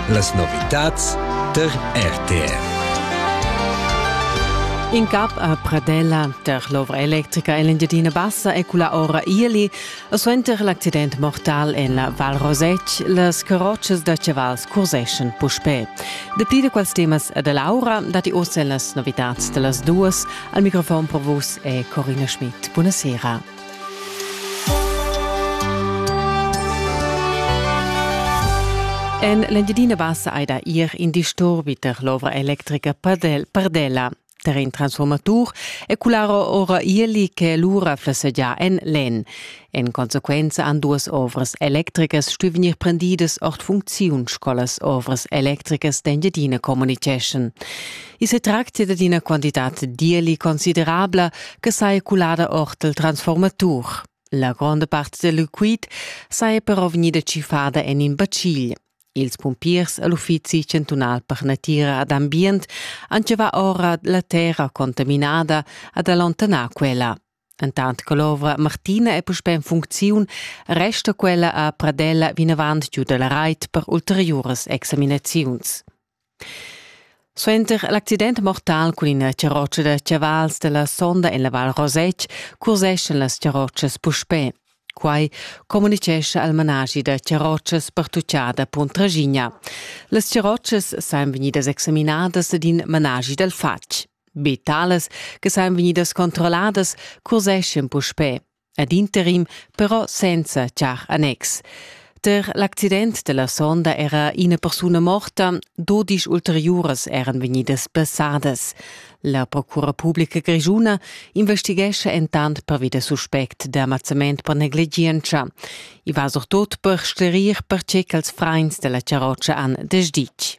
Las novitads tar RTR. In cap a Pradella tar l'ovra electrica Engiadina Bassa è cula ora Ieli e suenter l'accident mortal en la Val Rosec las carrotschas da chavals curseschan puspè. Dapli da quels temas e da Laura datti oz en las novitads da las duas. Al microfon per vus è Corina Schmidt. Buonasera. En l'Engiadina Bassa ei da ir in disturbi per l'ovra electrica Pardel, Pardella. Der in transformatur e cularo ora ieli che lura flessegia en len. En consequenza an duas ovras electricas stu vegnir prendidas ord funcziun scolas ovras electricas d'Engiadina communiceschen. I se tractia dad ina quantitat dierli considerabla che sai culada ord il transformatur. La gronda part del liquid sai però vegnida cifada en in bacil. Ils pumpiers all'uffizi chantunal per natira ad ambient han va ora la terra contaminada ad allontanar quella. Entant che l'ovra Martina è puspè en funcziun, resta quella a Pradella vinavant giu da la rait per ulteriuras examinaziuns. Suenter l'accident mortal cun ina charrotscha da chavals della sonda en la Val Rosetg curseschan las charrotschas puspè. Quai communicescha al managi da charrotschas pertuccada Puntraschigna. Las charrotschas san vegnidas examinadas ed in managi dal fatg. Be talas che sajan vegnidas controlladas curseschan puspè, ad interim però senza char annex. Ter l'accident della sonda era ina persuna morta, dodisch ulteriuras eran vegnidas passadas. La procura pubblica grischuna investighescha entant pervi da suspect d'amazzament per negligienza. I va surtut per sclerir pertge ch'als frains della charrotscha han desditg.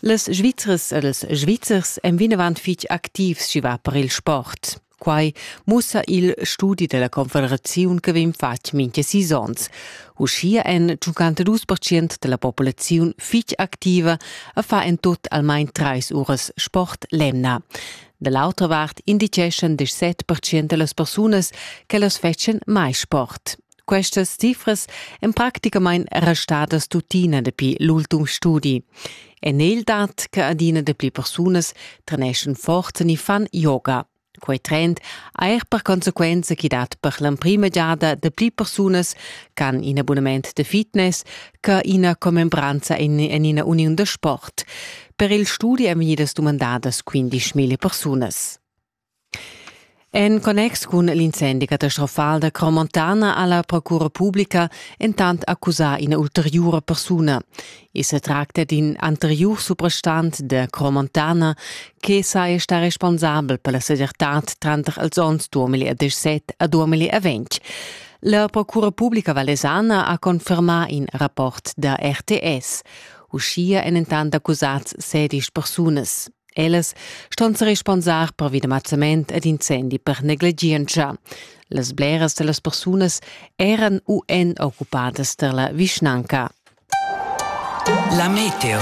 Las Svizras ed ils Svizzers èn vinavant fitg activs sch'i va per il sport. Quai mussa il studi della confederaziun che vegn fatg mintga sis onns. Uschia èn 52% della populaziun fitg activa e fa en tut almain trais uras sport l'emna. Da l'autra vart indiceschan 17% da las persunas che las fetschan mai sport. Questas cifras èn practicamain restadas tuttina dapi l'ultim studi. En el dat che adina dapli persunas treneschan forza ni fan yoga. Quei trend ha er per consequenza chi dat per l'emprima giada dapli persunas ch'han in abunament de fitness che ina commembranza in, in ina uniun da sport. Per il studi èn vegnidas dumandadas 15.000 persunas. En connex cun l'incendi catastrofal da Cromontana ha la procura publica entant accusà ina ulteriura persuna. I sa tracta d'in anteriur suprastant da Cromontana che saja stà responsabel per la segirtad tranter els onns 2017 a 2020. La procura publica valesana ha confermà in rapport da RTS. Uschia èn entant accusats sedisch persunas. Ellas ston se responsar pervi da mazzament ed incendi per negligientscha. Las bleras da las persunas eran u èn occupadas per la vischnanca. La meteo.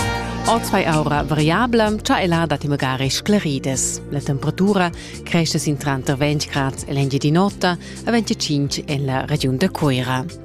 Ozvai aura variabla, cha ella dat magari sclaridas. La temperatura cresce sin tranter 20 grads e l'engiadin'otta a 25 en la regiun da Coira.